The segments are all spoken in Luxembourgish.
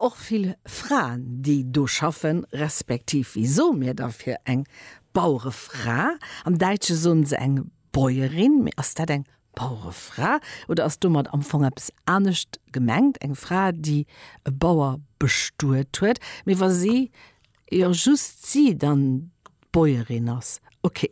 och vill Fraen déi do schaffen, respektiv wéi soe mir da fir eng Bauerefra? Am Däitsche soen se eng Bäuerin, mee ass dat eng Bauerefra oder ass domat am Fong eppes anescht gemengt, eng Fra déi e Bauer bestuet huet, mee wa si Jo, just si dann d'Bäuerin ass. Ok,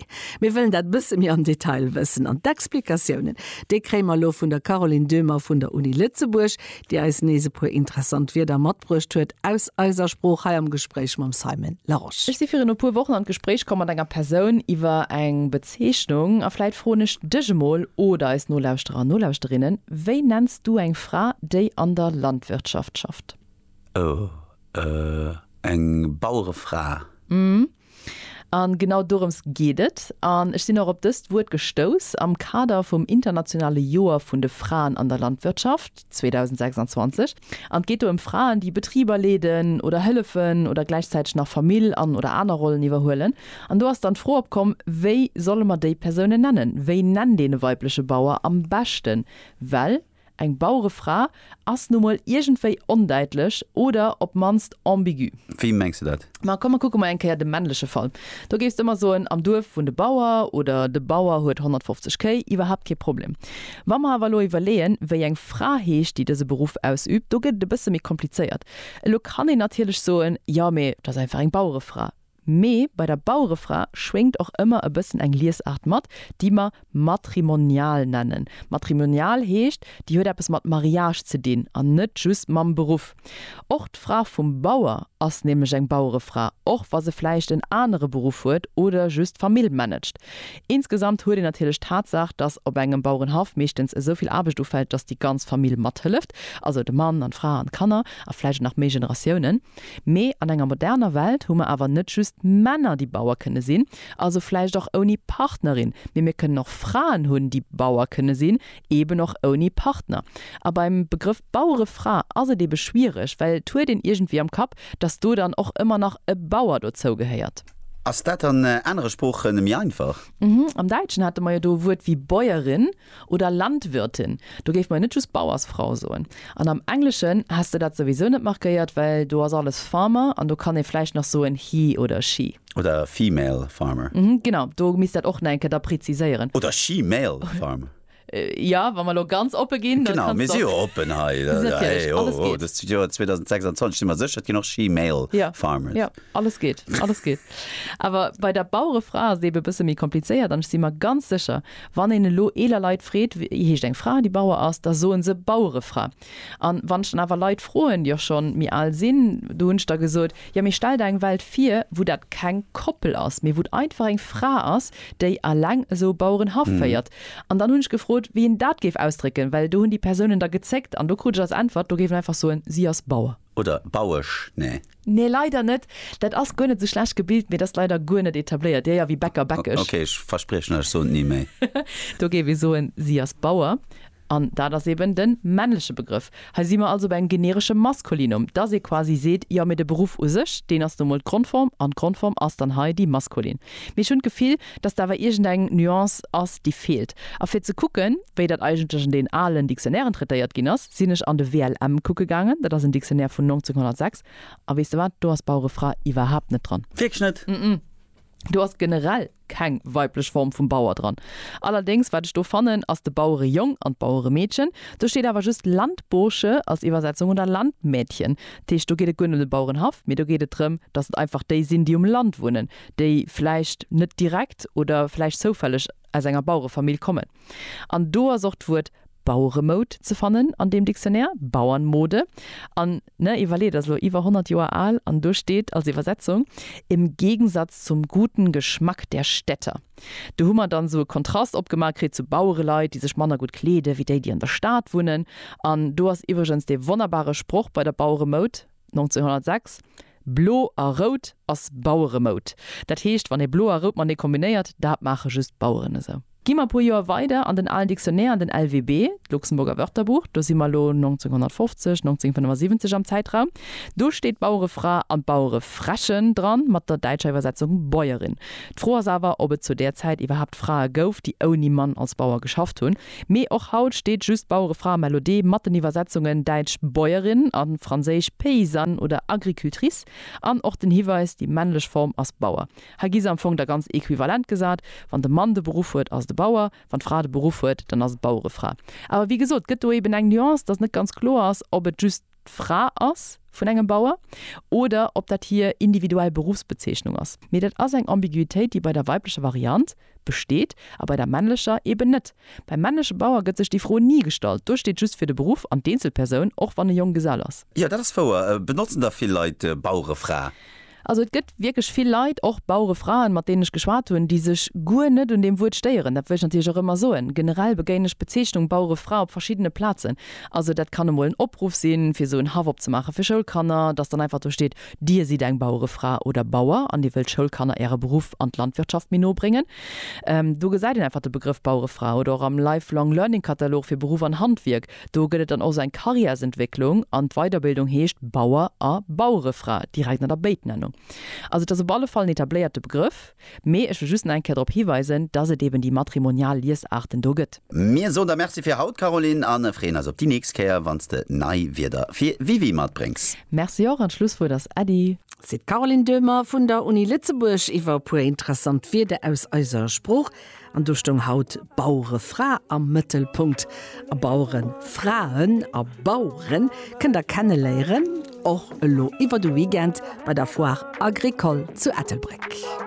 mir wëllen dat bësse méi am Detail wëssen. An d'Explikatiounen, déi kréie mer elo vun der Caroline Döhmer vun der Uni Lëtzebuerg, déi eis nees e puer interessant Wierder matbruecht huet aus eiser Sprooch hei am Gespréich mam Simon Larosche. Ech si virun e puer Wochen an d'Gespréich komm mat enger Persoun iwwer eng Bezeechnung. A vläit froen ech dech emol, oder eis Nolauschterer an Nolauschterinnen, Wéi nenns du eng Fra, déi an der Landwirtschaft schafft? Oh, euh, eng Bauerefra. Hm, an genau dorëms geet et. An ech sinn och op dëst Wuert gestouss am Kader vum internationale Joer vun de Fraen an der Landwirtschaft 2026. An et geet do ëm Fraen, déi Betriber leeden oder hëllefen oder gläichzäiteg nach Famill an oder aner Rollen iwwerhuelen. An do ass dann d'Fro opkomm, wéi solle mer déi Persounen nennen? Wéi nennt een e weibleche Bauer am beschten? Well. Eng Bauerefra ass nu mol iergendwéi ondäitlech oder op d'mannst ambigu. Wéi mengs de dat? Ma komm, mer kucke mol eng Kéier de männleche Fall. Do géifs de mer soen, am Duerf wunnt e Bauer oder de Bauer huet 150 Kéi, iwwerhaapt kee Problem. Wa mer awer elo iwwerleeën, wéi eng Fra heescht, déi dëse Beruff ausübt, do gëtt et e bësse méi komplizéiert. Elo kann een natierlech soen, jo, mee et ass einfach eng Bauerefra. Mee bei der Bauerefra schwéngt och ëmmer e bëssen eng Liesaart mat, déi mer matrimonial nennen. Matrimonial heescht, déi huet eppes mat Mariage ze dinn an net just mam Beruff. Och d'Fra vum Bauer ass nämlech eng Bauerefra, och wa se vläicht en anere Beruff huet oder just d'Famill managt. Insgesamt huet een natierlech d'Tatsaach, dass op engem Bauerenhaff meeschtens esou vill Aarbecht ufält, dass déi ganz Famill mathëlleft, also de Mann an d'Fra an d'Kanner a vläicht nach méi Generatiounen. Mee an enger moderner Welt hu mer awer net just Männer déi Bauer kënne sinn, also vläicht och ouni Partnerin, mee mir kënnen och Fraen hunn déi Bauer kënne sinn, eben och ouni Partner. A beim Begrëff Bauerefra ass et ebe schwiereg, well et huet een iergendwéi am Kapp, datt do dann och ëmmer nach e Bauer dozou gehéiert. Ass dat an anere Sprooche méi einfach? Am Däitschen hate mer jo do e Wuert wéi Bäuerin. Oder Landwirtin, do géif mer jo net just Bauersfrau soen. An am Engleschen häss de dat souwisou net markéiert, well do ass alles farmer an do kann ee vläicht nach soen he oder she. Oder female farmer. Genau, do misst dat och nach eng Kéier da preziséieren. Oder she-male farmer. Jo, wa mer elo ganz oppe ginn, da kanns de och. Genau, mir si jo oppen hei. Natierlech, alles geet. Hei, oh, Joer 2026, si mer sécher, et ginn och she-male farmers. Jo, jo, alles geet, alles geet. Awer bei der Bauerefra ass et ebe e bësse méi komplizéiert an ech si mer ganz sécher, Wann een elo eeler Leit freet, wéi heescht eng Fra, déi Bauer ass, da soen se Bauerefra. An wann ech dann awer Leit froen, déi och schonn méi al sinn, do hunn ech da gesot, jo mee stell der eng Welt vir, wou dat keng Koppel ass, mee wou et einfach eng Fra ass, déi alleng esou e Bauerenhaff féiert. An dann hunn ech gefrot, wéi een dat géif ausdrécken, well do hunn déi Persounen da gezéckt an do krut ech als Äntwert, do géif een einfach soen, si ass Bauer. Oder Bauesch, nee? Nee, leider net. Dat ass guer net sou schlecht gebilt, mee et ass leider guer net etabléiert. Dir, jo, wéi Bäcker, Bäckesch. Okay, ech verspriechen lech, ech soen et ni méi. Do géif ee soen, si ass Bauer. An dat ass eben de männleche Begrëff. Hei si mer also bei engem generesche Maskulinum, dass ee quasi seet, jo, mee de Beruff u sech, deen ass nu emol d'Grondform, an d'Grondform ass dann hei déi maskulin. Mee ech hunn d'Gefill, dass do awer iergendeng Nuance ass, déi feelt. A fir ze kucken, wéi dat eigentlech an deen alen Dictionnairen traitéiert ginn ass, Sinn ech an de WLM kucke gaangen, dat ass en Dictionnaire vun 1906, a weess de wat, do ass Bauere Fra iwwerhaapt net dran. Wierklech net? Ëmëm, do ass generell keng weiblech Form vum Bauer dran. Allerdéngs, wat ech do fannen, ass de Bauerejong an d'Baueremeedchen. Do steet awer just Landbursche als Iwwersetzung oder Landmädchen. Dat heescht, do geet et guer net ëm de Bauerenhaff, mee do geet et drëm, datt et einfach déi sinn, déi um Land wunnen, déi vläicht net direkt oder vläicht zoufälleg, aus enger Bauerefamill kommen. An do ass och d'Wuert Baueremoud ze fannen an deem Dictionnaire, Bauernmode. An, ne, iwwerleet, ass elo iwwer 100 Joer al an do steet als Iwwersetzung, im Gegensatz zum guten Geschmack der Städter. Do hu mer dann esou e Kontrast opgemaach kritt zu Bauereleit, déi sech manner gutt kleede wéi déi, déi an der Stad wunnen. An do ass iwwregens dee wonnerbare Sproch bei der Baueremoud, 1906, Blo a rout ass Baueremoud. Dat heescht, wann ee blo a rout matenee kombinéiert, dat maache just d'Baueren esou. Gi mer e puer Joer weider an den alen Dictionnaire, an den LWB, d'Luxemburger Wörterbuch, do si mer elo 1950, 1975 am Zäitraum, do steet d'Bauerefra an d'Bauerefräche dran, mat der däitscher Iwwersetzung Bäuerin. D'Fro ass awer, ob et zu där Zäit iwwerhaapt Frae gouf, déi ouni Mann als Bauer geschafft hunn. Mee och haut steet just d'Bauerefra Melodee mat den Iwwersetzungen däitsch Bäuerin a franséisch paysanne oder agricultrice an och den Hiweis, déi männlech Form ass Bauer. Hei gi se am Fong da ganz equivalent gesat, Wann de Mann de Beruff huet, ass et e Bauer, wann d'Fra de Beruff huet, dann ass et d'Bauerefra. Awer wéi gesot, et gëtt do eben eng Nuance, dass net ganz kloer ass, ob et just d'Fra ass vun engem Bauer oder ob dat hir individuell Beruffsbezeechnung ass. Mee dat ass eng Ambiguitéit, déi bei der weiblecher Variant, Besteet, a bei der männlecher eben net. Beim männleche Bauer gëtt sech déi Fro ni gestallt, do steet just fir de Beruff an d'Eenzelpersoun, och wann e Jonggesell ass. Jo, dat ass wouer. Benotzen da vill Leit Bauerefra? Also et gëtt wierklech vill Leit, och Bauerefraen, mat deenen ech geschwat hunn, déi sech guer net un deem Wuert stéieren. Dat wëll ech natierlech och ëmmer soen. Generell begéinen ech d'Bezeechnung Bauerefra op verschiddene Plazen. Also dat kann emol en Opruff sinn, fir esou en Haff opzemaachen fir Schoulkanner, datt dann einfach do steet Dir sidd eng Bauerefra oder Bauer an Dir wëllt Schoulkanner Äre Beruff an d'Landwirtschaft méi no bréngen? Do gesäit een einfach de Begrëff Bauerefra oder och am Lifelong Learning Katalog fir Beruff an Handwierk. Do gëtt et dann och esou eng Karriärsentwécklung an d'Weiderbildung heescht Bauer a Bauerefra direkt an der Béitnennung. Also et ass op alle Fall en etabléierte Begrëff. Mee ech wëll just nach eng Kéier drop hiweisen, dass et eben déi matrimonial Liesaarten do gëtt. Mir soen der Merci fir haut, Caroline, a freeën eis op déi nächst Kéier, wann s de nei Wierder fir WiWi matbréngs. Merci och, an d'Schlusswuert ass Äddi. Seet d'Caroline Döhmer vun der Uni Lëtzebuerg iwwer e puer interessant Wierder aus eiser Sprooch. An do stoung haut Bauerefra am Mëttelpunkt. A Bauerefraen a Baueren kënnt der kenneléieren, och elo iwwer de Weekend bei der Foire Agricole zu Ettelbréck.